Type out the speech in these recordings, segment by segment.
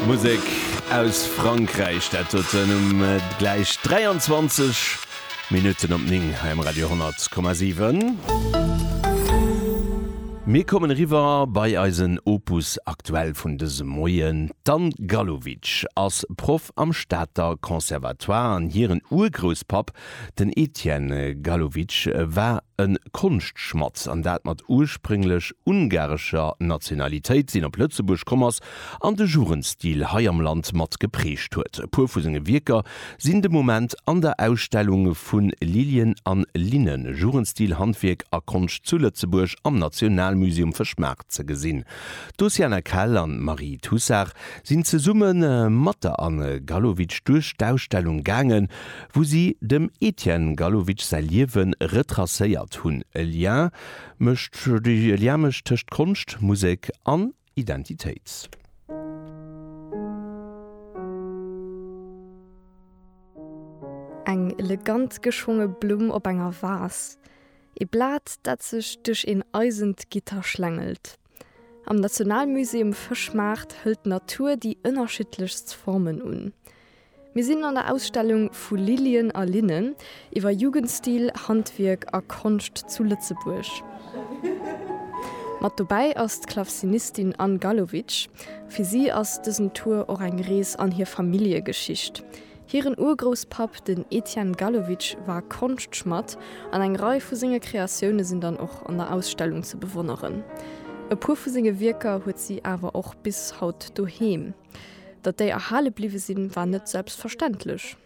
Musek aus Frankräich, dat huet en um gläich 23 Minutten op 9 hei um Radio 10,7. Mir kommen eriwwer bei eisen Opus aktuell vun dësem Moien. D'Anne Gallowitsch ass Proff am Stater Conservatoire an hiren Urgrousspapp Den Etienne Gallowitsch war e Konschtschmadd, an dat mat ursprénglech ungarescher Nationalitéit, seen op Lëtzebuerg komm ass an de Jugendstil hei am Land mat geprägt huet. E puer vu senge Wierker sinn de Moment an der Ausstellung Vu Lilien an Linnen, Jugendstil, Handwierk a Konscht zu Lëtzebuerg am Nationalmuseum Fëschmaart ze gesinn. D'Oceana Kell an d'Marie Tussard sinn zesumme mat der Anne Gallowitsch duerch d'Ausstellung gaangen, wou si dem Etienne Gallowitsch säi Liewe retracéiert hunn, e Lien mécht e Lien mécht tëscht Konscht, Musek an Identitéit. Eng elegant geschwonge Blumm op enger Vas, ee Blat, dat sech duerch een eisent Gitter schlängelt. Am Nationalmusée um Fëschmaart hëlt d'Natur déi ënnerschiddlechst Formen un. Mir sinn an der Ausstellung Vu Lilien a Linnen, iwwer Jugendstil, Handwierk a Konscht zu Lëtzebuerg. Mat dobäi ass d'Klavzinistin Anne Gallowitsch. Fir si ass dësen Tour och eng Rees an hir Familljegeschicht. Hiren Urgrousspapp, den Etienne Gallowitsch, war Konschtschmadd an eng Rei vu senge Kreatioune sinn dann och an der Ausstellung ze bewonneren. E puer vu senge Wierker huet si awer och bis haut doheem. Datt déi erhale bliwwe sinn, war net selbstverständlech.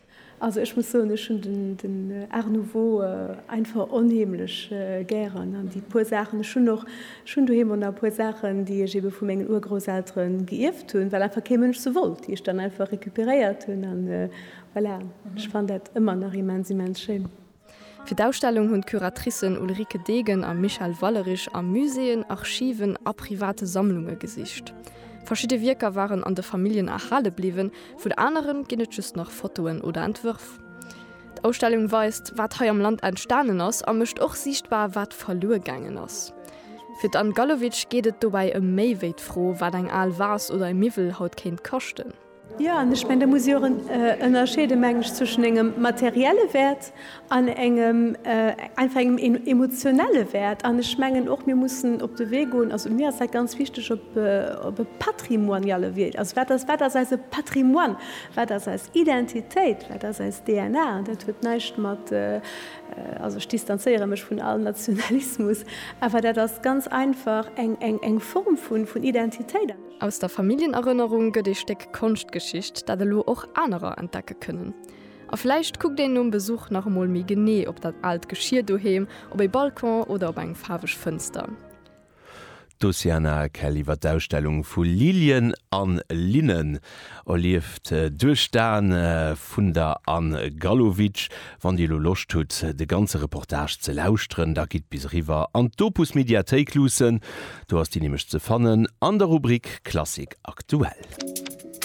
Also ech muss soen, ech hunn den Art nouveau einfach onheemlech gären an déi puer Saachen, ech hunn och, ech hunn doheem och nach e puer Saachen, déi ech ebe vu mengen Urgrousseltere geierft hunn, well einfach kee Mënsch se wollt, déi ech dann einfach recuperéiert hunn an voilà. Ech fannen dat ëmmer nach immens, immens schéin. Fir d'Ausstellung hunn d'Curatricen Ulrike Degen a Michèle Wallerich a Muséeën, Archiven a private Sammlunge gesicht. Verschidde Wierker waren an de Familljen erhale bliwwen, vun anere ginn et just nach Fotoen oder Entwërf. D'Ausstellung weist, wat hei am Land entstanen ass a mécht och siichtbar, wat verluer gaangen ass. Fir d'Anne Gallowitsch geet et dobäi ëm méi wéi d'Fro, wat eng al Vase oder e Miwwel haut kéint kaschten. Jo, an ech mengen, do muss ee och ënnerscheede meng ech zwëschen engem materielle Wäert an engem einfach engem emotionelle Wäert. An ech mengen och mir mussen op de Wee goen, also mir ass dat ganz wichteg op op e patrimoniale Wee, also wat ass wat ass eise Patrimoine, wat ass eis Identitéit, wat ass eis DNA? An dat huet näischt mat, also ech distanzéiere mech vun all Nationalismus, awer dat ass ganz einfach eng eng eng Form vun vun Identitéit. Aus der Familljenerënnerung gëtt ee Stéck Konschtgeschicht, dat elo och anerer entdecke kënnen. A vläicht kuckt een nom Besuch nach emol méi genee op dat aalt Geschier doheem, op ee Balcon oder op eng faarweg Fënster. D'Oceana Kell iwwer d'Ausstellung vu Lilien a Linnen erlieft duerch d'Aen vun der Anne Gallowitsch. Wann Dir elo Loscht hutt, de ganze Reportage ze lauschteren, da gitt bis eriwwer an d'Opus Mediathéik luussen. Do ass déi nämlech ze fannen an der Rubrik Klassik aktuell.